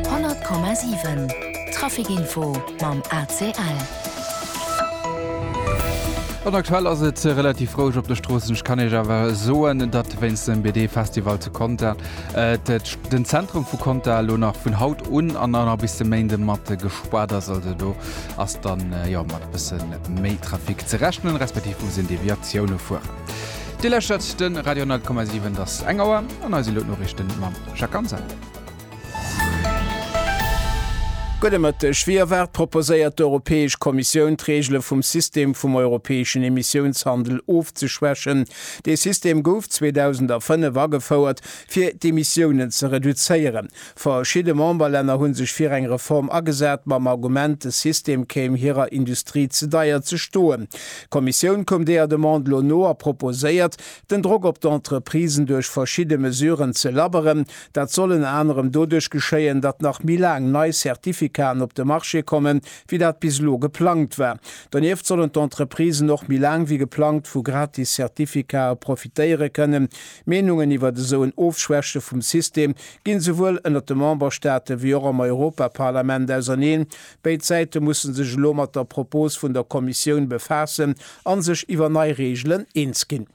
100,7 Trafic Info mam ACL. An aktuell ass et relativ roueg op de Stroossen. Ech kann Iech awer soen, datt wéinst dem BD-Festival zu Conter den Zentrum vu Conter elo nach vun haut un an dann nach bis de Méinde mat gespaart ass. Also do ass dann jo mat e bësse méi Trafic ze rechnen, respektiv muss een Deviatioune fueren. Dir lauschtert de Radio 100,7. Et ass eng Auer an eis elo d'Noriichten mam. Jacques Anzak. Gudde Mëtteg. Wéi erwaart proposéiert d'Europäesch Kommissioun d'Reegele vum System vum europäeschen Emissiounshandel ofzeschwächen. Dee System gouf 2005 agefouert, fir d'Emissiounen ze reduzéieren. Verschidde Memberlänner hu sech fir eng Reform agesat, mam Argument, de System kéim hirer Industrie ze deier ze stoen. D'Kommissioun koum deeër Demande elo no a proposéiert, Den Drock op d'Entreprisen duerch verschidde Mesuren ze labberen, dat soll ënner anerem doduerch geschéien, datt nach méi laang nei Certificaten op de Marché kommen, wéi dat bis elo geplangt war. Donieft sollen d'Entreprisen och méi laang wéi geplangt vu gratis Certificaten profitéiere kënnen. Meenungen iwwert esou en Ofschwäche vum System ginn esouwuel ënnert de Memberstaaten, wéi och am Europaparlament auserneen. Béid Säite musse sech elo mat der Propos vun der Kommissioun befaassen a sech iwwer nei Reegelen eens ginn.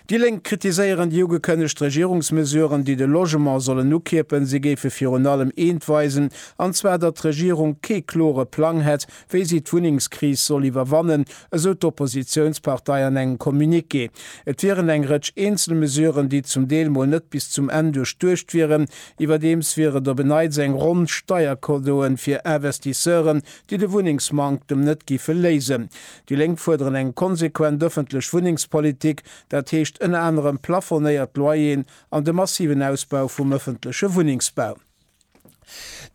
Déi Lénk kritiséieren déi ugekënnegt Regierungsmesuren, déi de Logement sollen ukierpen. Si géife virun allem eent weisen, an zwar datt d'Regierung kee klore Plang hätt, wéi si d'Wunnengskris soll iwwerwannen, esou d'Oppositiounspartei an engem Communiqué. Et wieren eng Rëtsch eenzel Mesuren, déi zum Deel mol net bis zum Enn duerchduecht wieren, Iwwerdeems wier et op en Neits eng Ronn Steiercadeauen fir Investisseuren, déi de Wunnengsmanktem net giffe léisen. Déi Lénk fuerderen eng konsequent ëffentlech Wunnengspolitik, dat heescht ënner anerem plafonéiert Loyeren an de massiven Ausbau vum ëffentleche Wunnengsbau.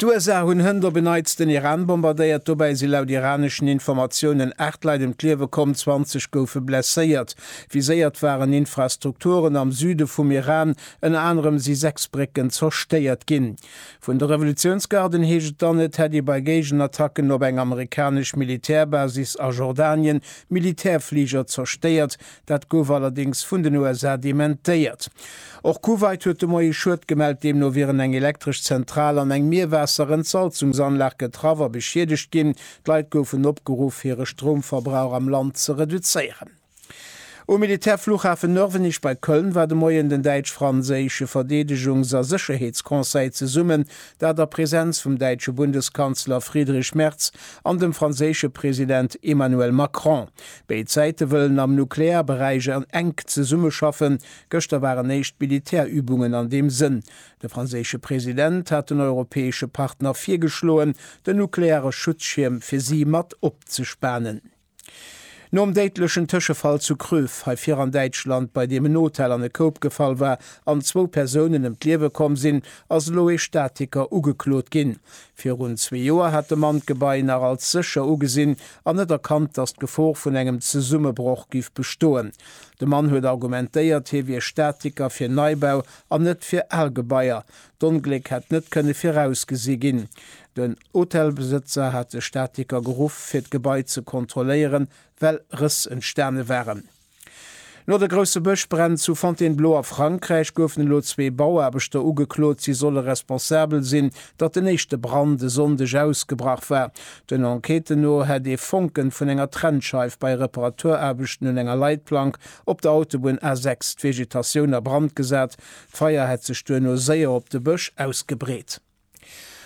D'USA hunn hënt op en Neits den Iran bombardéiert, dobäi si laut iraneschen Informatiounen 8 Leit ëm d'Liewe komm, 20 goufe blesséiert. Viséiert waren Infrastrukturen am Süde vum Iran, Ënner anerem si 6 Brécken zerstéiert ginn. Vun de Revolutiounsgarden heescht et dann, et hätt ee bei Géigenattacken op eng amerikanesch Militärbasis a Jordanien Militärfliger zerstéiert. Dat gouf allerdéngs vun den USA dementéiert. Och Kuwait huet de Moie Schued gemellt. Deemno wieren eng elektresch Zentral an eng Mierwaasserentsalzungsanlag getraff a beschiedegt ginn. D'Leit goufen opgeruff, hire Stroumverbrauch am Land ze reduzéieren. Um Militärfluchhafen Nörvenich bei Köln war de Moien den däitsch-franséische Verdeedegungs a Sécherheetsconseil zesummen, dat a Präsenz vum däitsche Bundeskanzler Friedrich Merz an dem franséische President Emmanuel Macron. Béid Säite wëllen am Nuklearberäich enk zesummeschaffen. Gëschter waren éischt Militärübungen an deem Sënn. De franséische President hat den europäesche Partner virgeschloen, den nukleare Schutzschierm fir si mat opzespanen. Nom déidlechen Tëschefall zu Kröv, hei vir an Däitschland, bei deem en Hotel an e Koup gefall war an zwou Persounen ëm d'Liewe komm sinn, ass elo ee Statiker ugeklot ginn. Virun zwee Joer hat de Mann d'Gebai nach als sécher ugesinn an net erkannt, datt d'Gefor vun engem Zesummebroch géif bestoen. De Mann huet argumentéiert, hie wier Statiker fir Neibau an net fir al Gebaier. D'Ongléck hätt net kënne virausgesi ginn. Den Hotelbesëtzer hat de Statiker geruff, fir d'Gebai ze kontrolléieren, well Rëss entstane waren. No de grousse Bëschbränn zu Fontainebleau a Frankräich goufen elo zwee Bauaarbechter ugeklot, si solle responsabel sinn, datt den éischte Brand e Sonndeg ausgebrach war. Den Enquêten no hätt ee Fonken vun enger Trennscheif bei Reparaturaarbechten un enger Leitplank op der Autobunn A6 d'Vegetatioun a Brand gesat, D'Feier hätt sech duerno séier op de Bësch ausgebreet.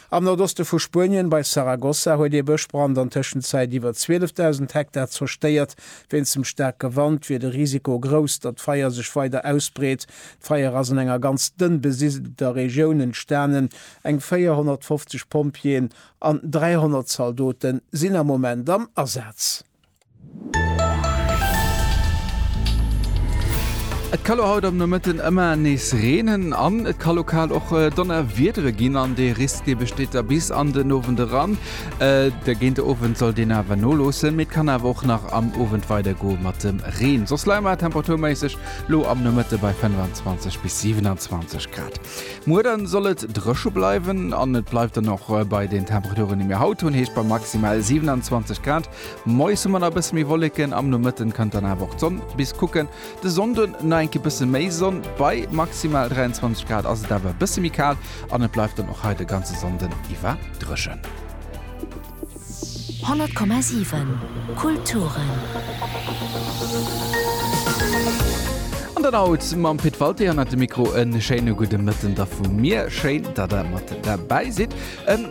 Am Nordoste vu Spuenien, bei Saragossa, huet ee Bëschbrand an Tëschenzäit iwwer 12.000 Hektar zerstéiert. Wéinst dem staarke Wand wier de Risiko grouss, datt d'Feier sech weider ausbreet. D'Feier ass an enger ganz dënn besidelter Regioun entstanen. Eng 450 Pompjeeën an 300 Zaldote sinn am Moment am Asaz. Et ka lo haut am Nomëtten ëmmer nees reenen an et ka lokal och Donnerwiedere ginn an dee Risk besteet da bis an den Owend eran. De géint de Owend soll deen awer noloossen, mee et kann awer och nach am Owend weider goe mat dem Reen. Soss leie mer temperaturméisseg lo am Nomëtte bei 25 bis 27 Grad. Muer dann soll et drëche bleiwen an et bleift dann och bei den Temperaturen déi mir haut hunn, heescht bei maximal 27 Grad. Moies hu mer nach e bësse méi Wolleken, am Nomëtten kënnt dann awer och d'Sonn bis kucken. De Sonnde nach eng Kéier bësse méi Sonn, bei maximal 23 Grad ass et awer e bësse méi kal an et bleift dann och hei de ganze Sonnde iwwer drëchen. 100,7 Kulturen. An dann haut mam Pit Walté hannert dem Mikro. E schéine gudde Mëtten da vu mir. Schéin, datt der mat derbäi sidd.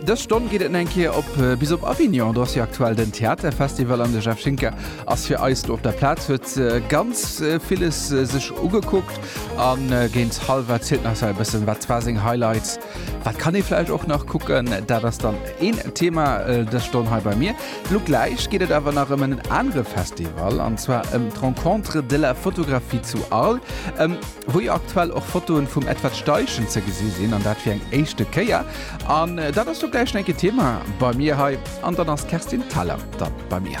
Dës Stonn geet et eng Kéier op bis op Avignon. Do ass jo aktuell den Theaterfestival an de Jeff Schinker ass fir eis do op der Plaz, huet ganz villes sech ugekuckt a géint hallwert zielt nach esou e bëssen, wat war seng Highlights. Wat kann ee vläicht och nach kucken, dat ass dann een Thema dës Stonn hei bei mir. Lo gläich geet et awer nach ëm en anere Festival, an zwar ëm d'Rencontres de la photographie zu Arles, wou jo aktuell och Fotoe vum Edward Steichen ze gesi sinn, an dat fir eng éischte Kéier. An dat ass lo gläich nach eng Kéier Thema bei mir hei. An dann ass d'Kerstin Thalau da bei mir.